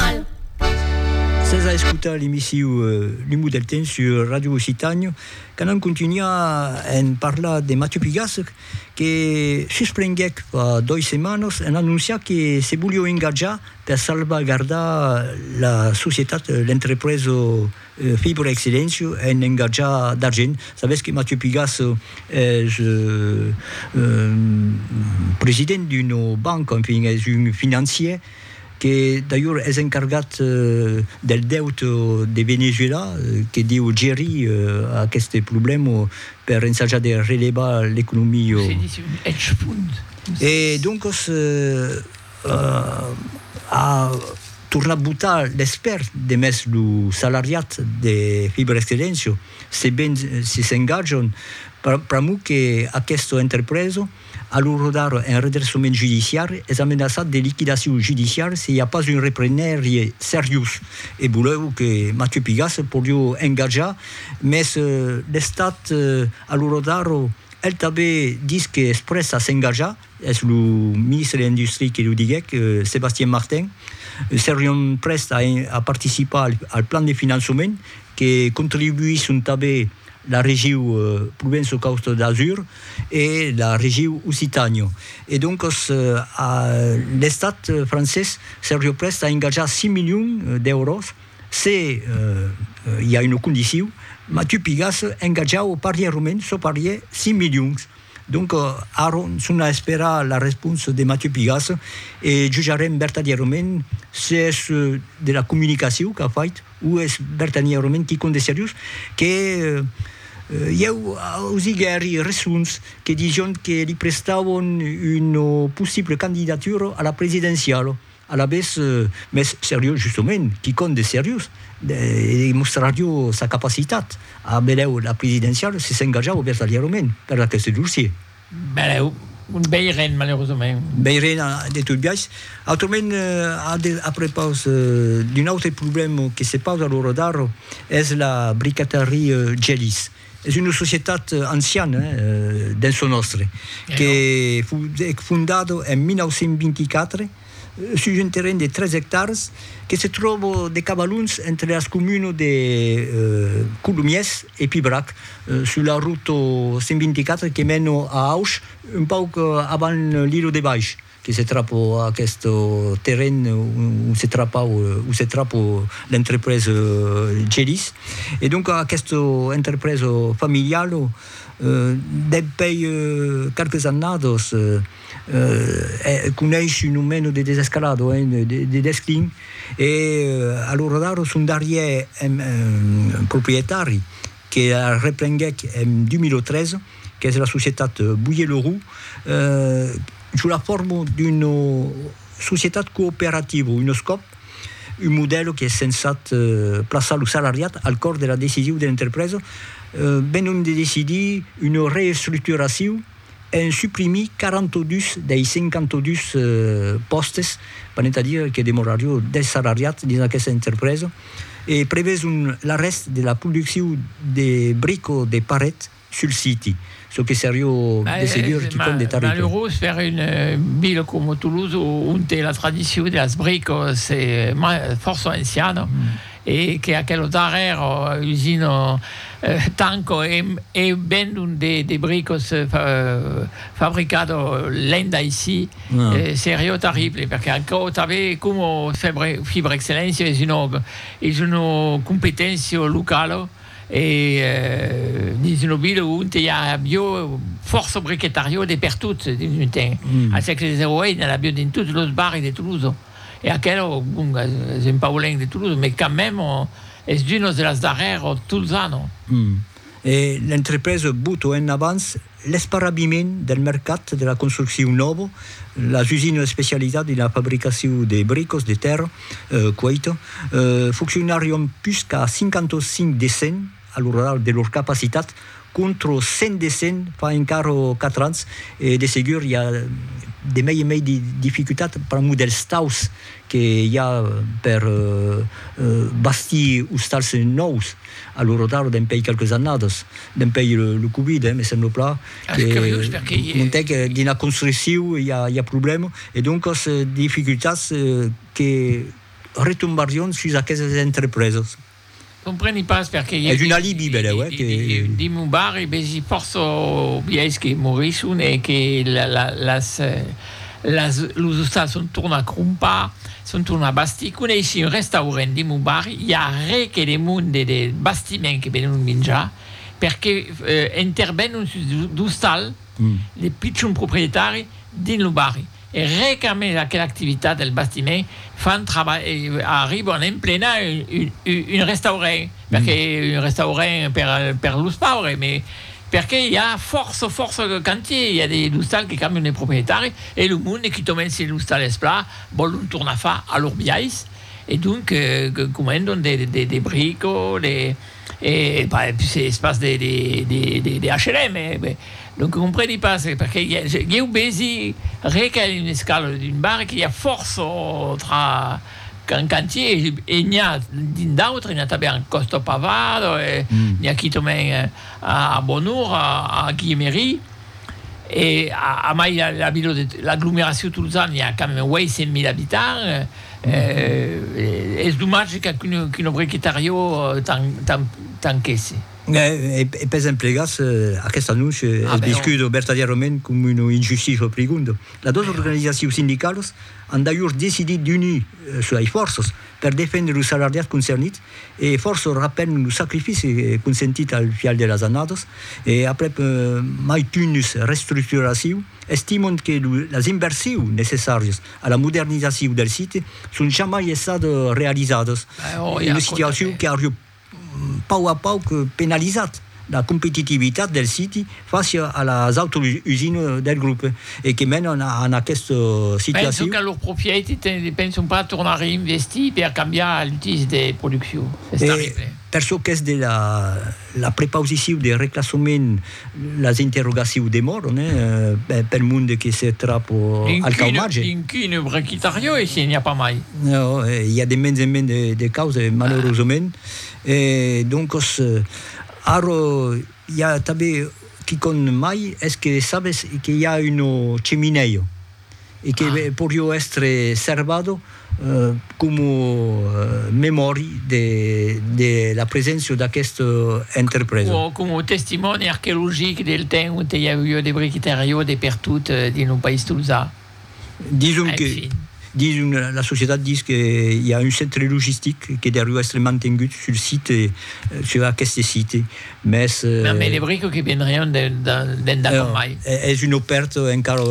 Al. Sas a escotar l'emissiu L'Umu del Temps sur Radio Occitània, qu'anam contunhar en parlar de Mathieu Pigassec, que susprenguèc fa dois setmanas en anonciar que se voliá engatjar per salvagardar la societat, l'entrepresa Fibra Excellentia en engatjar d'argent. Sabètz que Mathieu Pigassec es president d'una banca, enfin es un financier, que d'ailhors es encargat del deute de Venezuela, que deu gerir aqueste problèma per ensajar de relevar l'economia. Se ditz un hedge fund. E doncas a tornat botar l'espèrt demest lo salariat de Fibra Excellentia, se ben si s'engatjan, pr'amor que aquesta entrepresa, A lo rodar un redressament judiciari es amenaçat de liquidacion judiciari se i a pas un reprenèrie seriós e volèu que Mathieu Pigasse se podió engatjar mes l'estat a lo rodar el tanben dis que es près a s'engatjar es lo ministre de l'industria que lo diguèc Sébastien Martin serion près a participar al plan de finançament que contribuisson tanben la regiu Provenço-Causta d'Azur e la regiu Occitània. E doncas l'Estat francés se rioprèst a engatjar 5 milions d'èuros se i a una condiciu, mas tu pigas engatjar o parier o mens, çò parier 5 milions. Donc aron son a esperar la responsa de Mathieu Pigasse e jujarem vertadièrament se es de la comunicaciu qu'a fait, O es vertanièrament quicòm de seriós? Que ieu ausiguèri resons que dison que li prestàvon una possibla candidatura a la presidenciala. Alavetz, mès seriós justament, quicòm de seriós, e mostrarió sa capacitat a benlèu la presidenciala se s'engajava vertanièrament per aqueste dossier. Benlèu, un bèi ren, malerosament. Bèi ren, de tot biais. Autrament, a prepaus d'un autre problèma que se pausa a l'ora d'ara, es la bricaterie Gellies. Es una societat anciana, dens çò nòstre, que foguèt fondada en 1924, sus un terren de 3 ectars que se tròba de cabalons entre las comunes de Colomiers e Pibrac, sus la rota 124 que mena a Auch, un pauc avant l'Ilo de Baish, que se trapa a aqueste terren ont se trapau, ont se trapa l'entrepresa Gelis. E donc aquesta entrepresa familiala, dempèi qualques annadas, Coneis un nomeno de desescalado, de desclin, e a l'ora d'ara son darrièr proprietari que la reprenguèc en 2013, qu'es la societat Boyer-Leroux, sus la forma d'una societat cooperativa, un escòp, un modèl qu'es censat plaçar lo salariat al còr de la decisiu de l'entrepresa, benlonc de decidir una reestructuraciu, en suprimir 42 dei 52 pòstes, venent a dire que demorarió 10 salariats dins aquesta entrepresa, e preveson l'arrèst de la produccion de brico de paret sul siti, çò que serió de segur quicòm de terrible. Malerós per una vila coma Toulouse onte la tradicion de las bricas es fòrça anciana. e que aquelo darrèr usino tanco e vendon de bricos fabricado lenda aicí serió terrible perque aquò tanbe como Fibrexcellentia es una es una competéncia locala e dins una vila onte i a avió fòrça briquetarió de pertot dins un temps a sègle xix i a avió dins totes los barris de Tolosa. E aquelo, bon, es un paulenc de Toulouse, mais quand même, es d'unos de las darrèrs tolzano. E l'entrepresa bota en avans l'esparrabiment del mercat de la construccion nòva, las usinas especializadas dins la fabricacion de bricos de tèrra cueita fonccionarion pus qu'a 55 de 100 a lo radar de lor capacitat, contro 100 de 100 fa encara 4 ans, e de segur i a de mei e mei de dificultat pr'amor dels taus que i a per bastir ostals nòus a lo radar dempèi qualques annadas, dempèi lo covid, eh, me sembla pla que montèc dina construcciu i a problèma e doncas dificultats que retombarrion sus aquesas entrepresas. Compreni pas perqué i e un dimon bar e besi fòrça biais que morisson e que las las los ostals son torna a crompar son torna a bastir coneissi un restaurent dimon bar i a re que de mon de de bastiment que venon minjar perqué intervenon sus d'ostal de pichon proprietari dins lo barri. E re qu'a mès aquela activitat del bastiment fan arriban emplenar un restaurent, perque un restaurent per los paures, me perque i a fòrça fòrça cantiers, i a des ostals que cambian de proprietari e lo monde qui tomben se l'ostal es plan vòlon tornar far a lor biais e donc comandan des bricots, des. E pas es pas de H&M, donc compreni pas perqué ieu vesi re qu'a un escalo d'un bar que i a fòrça autra qu'un cantier e n'i a d'un d'autre, n'i a tanben a Còsta Pavada, n'i a quitament a Bonora, a Guiemeri. e a mai la vila de l'aglomeracion tolosana i a quand même 800.000 abitants es domatge qu'un obrier que tariò tanquèsse. E pes emplegats aquest anonç es viscut vertadièrament coma una injustícia prigonda. Las dos organizacions sindicalas an d'ajorn decidit d'unir suei fòrças per defendre los salardiats concernits e fòrça rapèn lo sacrifici consentit al fial de las annadas e aprèp maitunhus restructuraciu, estimant que las inversius necessàrias a la modernizaciu del site son jamai essat realizadas, una situaciu qu'ariu pauc a pauc penalizat la competitivitat del siti fàcia a las autras usinas del grop e que mènan a aquesta situacion. Penso que lor propriétat ne depenson pas tornar a reinvestir per cambiar l'utís de produccion. Es terrible. Per çò qu'es de la prepausicion de reclassament, Las interrogaciu demòron pel monde que se trapo al cau marge. D'incune brequitariò e se n'i a pas mai. Nau, i a de mens en mens de causes, malerosament. E doncos, arrò i a tanben quicòm mai, es que sabes que i a un ceminèu. e que porió èstre servado coma memòri de la preséncia d'aquesta entrepresa. O coma testimòni arqueologic del temps onte i avió de briquetariò de pertot dins lo país tolzà. Dison que, dison la societat dis que i a un centre logistic que deriu èstre mantengut sul site, sur aqueste site, Mès. Mès me debrico que vendrián d'endà com mai. Es un opèrt encara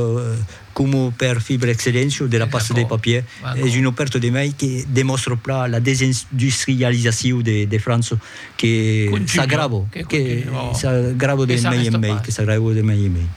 coma per Fibre Excellentio de la pasta de papier, es un opèrt de mai que demòstra plan la desindustrializacion de França que s'agrava, que s'agrava de mai en mai, que s'agrava de mai en mai.